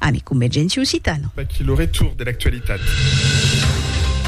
Ami Convergéncia Occitana. Vaqui lo retour de l'actualitat.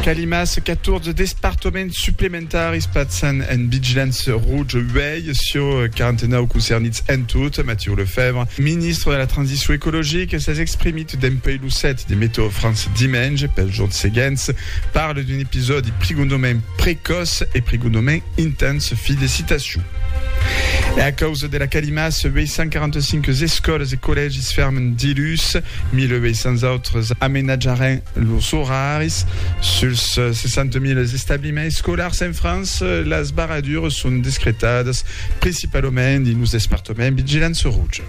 Calimas, 14 despartoments suplementaris passan en vigilància rouja uèi sur 49 concernits en tot. Mathieu Lefèvre, ministre de la Transicion Ecologica, s'es exprimit dempuèi lo set de Météo-France dimenge. Pels jorns seguents, parle d'un episòdi prigondament precòç e prigondament intens. Fi de citacion. E a causa dera calimaça, 845 escòles e collègis fèrmen dilhus, 1.800 autres amenatjaràn los oraris. Suls 60.000 establiments escolars en França, las barradures son descretadas principalament dins los despartaments vigilants rouj.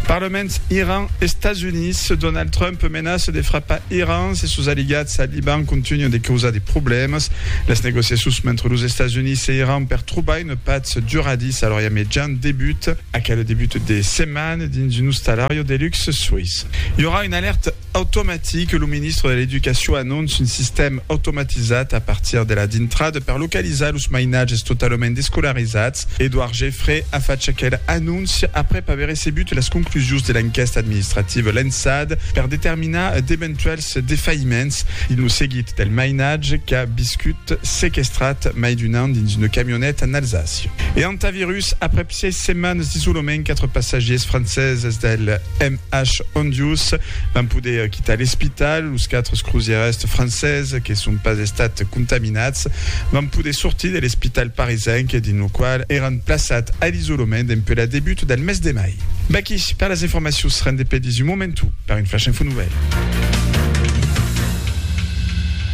Parlament Iran, Estats Units, Donald Trump menaça de frapar Iran se sos aliats al Liban contunhan de causar de problèmas. Las negociacions mentre los Estats Units e Iran per trobar una patz duradissa a l'Orient Mejan debuta. Aquel debut de setmana dins un ostalariu de luxe suís i aurà una alèrta Automatic, lo ministre de l'Educacion anonce un sistèm automatizat a partir de la dintrada per localizar los mainatges totalament descolarizats. Edouard Geffray a fach aquel anóncia aprèp aver recebut las conclusions de l'enquèsta administrativa lançada per determinar d'eventuèls defaïments dins lo seguit del mainatge qu'a viscut sequestrat mai d'un an dins una camioneta en Alsàcia e Hantavirus, aprèp Sièis setmanes d'isolament, quatre passatgiers franceses del MH Hondius van poder quitar l'espital. Los quatre crosièrs franceses que son pas estats contaminats van poder sortir de l'espital parisenc dins lo qual èran plaçats a l'isolament dempuèi la debut del mes de mai. Vaqui per las informacions, rendé pedís un momentu per un Flash Info Nouvèl.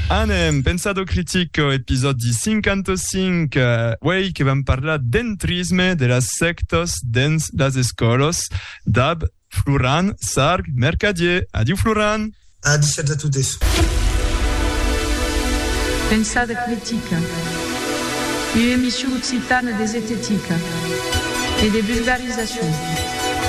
Anem pensar d'o critic, episòdi 55, uèi que vam parlar d'en. Trisme de las sèctas dens las escòlas, dab Floran Sarg Mercadier. Adiu Floran! A dichatz a totes. Pensar de critica. Ua emission occitana de zetetica e de vulgarizacion.